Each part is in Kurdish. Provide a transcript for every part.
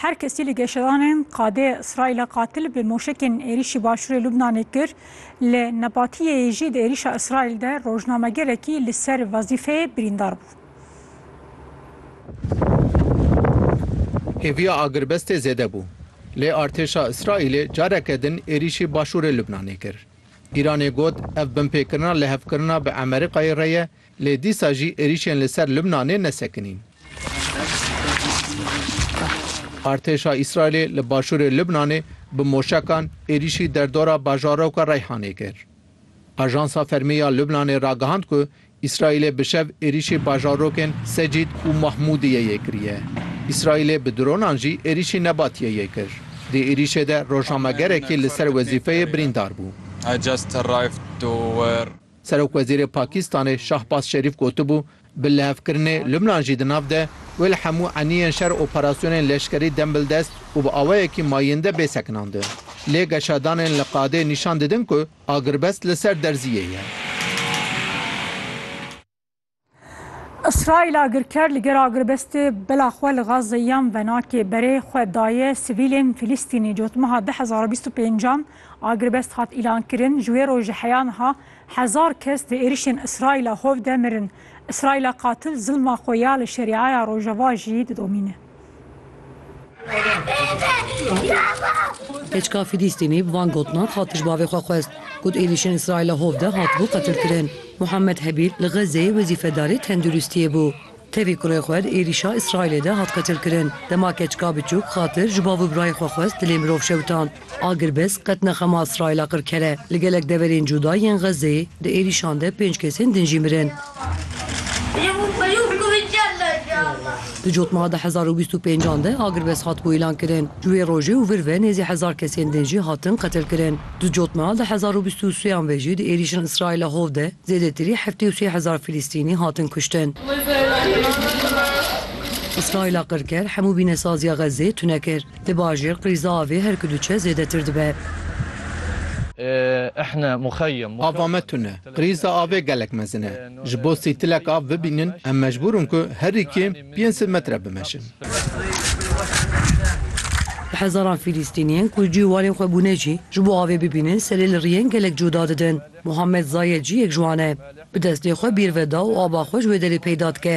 Her kesî li geşedanên qadê Îsraîla qatil bi moşekên êrîşî başûrê Lubnanê kir, li Nebatiyeyê jî di êrîşa Îsraîl de rojnamegerekî li ser wezîfeyê birîndar bû. Hêviya agirbestê zêde bû, lê artêşa Îsraîlê careke din êrîşî başûrê Lubnanê kir. Îranê got ev binpêkirina lihevkirina bi Emerîkayê re ye Lê dîsa jî êrîşên li ser Lubnanê ne sekinîn. Artêşa Îsraîlê li başûrê Lubnanê bi moşekan êrîşî derdora bajaroka Reyhanê kir. Ajansa fermî ya Lubnanê ragihand ku Îsraîlê bi şev êrîşî bajarokên Secîd û Mahmûdiyê yê kiriye. Îsraîlê bi dronan jî êrîşî Nebatiyê yê kir. Di êrîşê de rojnamegerekî li ser wezîfeyê birîndar bû. Serokwezîrê Pakîstanê Şahbaz Şerîf gotibû, Bi lihevkirinê Lubnan jî di nav de, wê li hemû eniyên şer operasyonên leşkerî dem bil dest û bi awayekî mayînde bê sekinandin. Lê geşadanên li qadê nîşan didin ku agirbest li ser derziyê ye. Îsraîl agirker li gel agirbestê bila xwe li Gazze yan venakê berê xwe daye sivîlên Fîlîstînî. Cotmeha du hezar û bîst û pêncan agirbest hat îlankirin. Ji wê rojê heya niha hezar kes di êrişên Îsraîla hov de mirin. Îsraîla qatil zilma xwe ya li Şerîaya Rojava jî didomîne. Keçika Fîlîstînî bi van gotinan hat tij bavê xwe xwest, Got êrîşên Îsraîla hov de hatibû qetilkirin. Muhammed Hebîl li Xezzeyê wezîfedarê tenduristiyê bû. Tevî kurê xwe di êrîşa Îsraîlê de hat qetilkirin. Dema keçika biçûk xatir ji bav û birayê xwe xwest dilê mirov şewitand. Agirbest qet nexema Îsraîla qir kere. Li gelek deverên cuda yên Xezzeyê di êrîşan de pênc kesên din jî mirin. Di cotmeha di hezar û bîst û pêncan de agirbest hatibû îlan kirin. Ji wê rojê û vir ve nêzî hezar kesên din jî hatin qetil kirin. Di cotmeha di hezar û bîst û sêyan ve jî di êrîşên Îsraîla hov de zêdetirî heftê û sê hezar Filîstînî hatin kuştin. Îsraîla qirker hemû bînesaziya Xezzeyê tune kir. Li bajêr qîza avê her ku diçe zêdetir dibe. Ava me tune, qîza avê gelek mezin e. Ji bo sîtilek av bibînin em mecbûr in ku herî kêm pênc sed metre bimeşin. Bi hezaran Fîlîstîniyên ku cî û warên xwe bûne jî ji bo avê bibînin serê li riyên gelek cuda didin. Muhammed Zayed jî yek ji wan e. Bi destê xwe bîr veda û ava xwe ji wê derê peyda dike.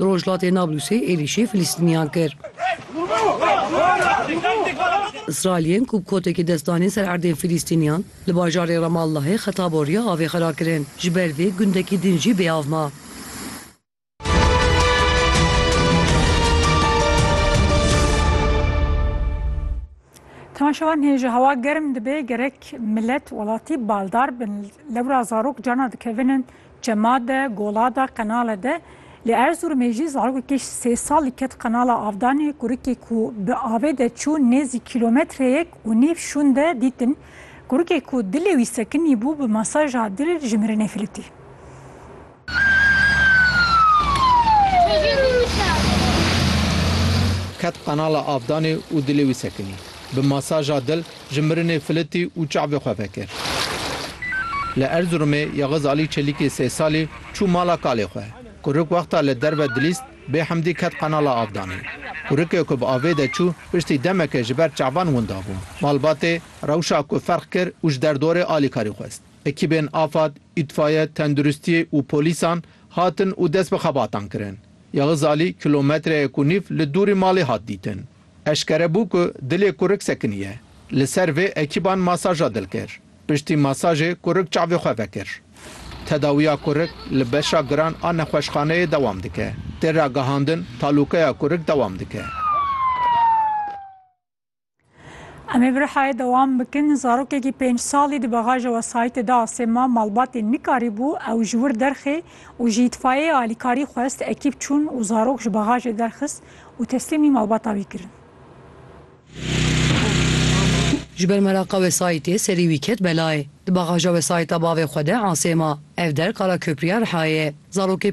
Li rojhilatê Nablusê êrîşê Filistîniyan kir. Israîliyên ku bi kotekê dest danîn ser erdên Filistîniyan li bajarê Ramallahê xeta boriya avê xera kirin. Ji ber vê gundekî din jî bêav ma. Temaşevan hêja hewa germ dibe gerek milet welatî baldar bin lewra zarok cana dikevin in Çema de, Gola de, Qenale de. Li Erzurumê jî zarokekî sê salî ket Qenala Avdanê, kurikê ku bi avê de çû nêzî kîlometreyek û nîv şûn de dîtin. Kurikê ku dilê wî sekinî bû bi masaja dil ji mirinê filitî. Ket Qenala Avdanê û dilê wî sekinî bi masaja dil Ji mirinê filitî û çavê xwe vekir. Li Erziromê Yexiz Alî Çelîkê sê salî çû mala kalê xwe. Kurik wexta li derve dilîst bê hemdî ket qenala avdanê. Kurikê ku bi avê de çû piştî demeke ji ber çavan winda bû. Malbatê rewşa ku ferq kir û ji derdorê alîkarî xwest. Ekîbên afad, îtfaye, tenduristiyê û polîsan hatin û dest bi xebatan kirin. Yexiz Alî kilometreyek û nîv li dûrî malê hat dîtin. Eşkere bû ku dilê kurik sekinî ye. Li ser vê ekîban masaja dil kir. Piştî masajê kurik çavê xwe vekir. Tedawiya kurik li beşa giran a nexweşxaneyê dewam dike. Tê ragihandin talûkeya kurik dewam dike. Em ê bi rihayê dewam bikin. Zarokekî pênc salî di bexaja wesayîtê de asê ma. Malbatê nikarîbû ew ji wir derxê û ji îtfayeyê alîkarî xwest. Ekîb çûn û zarok ji bexajê derxist. û teslîmî malbata wî kirin. Ji ber meraqa wesayîtê serî wî ket belayê. Di bagaja wesayîta bavê xwe de Asê ma. Ev der Kara Köprîya Rihayê ye. Zarokê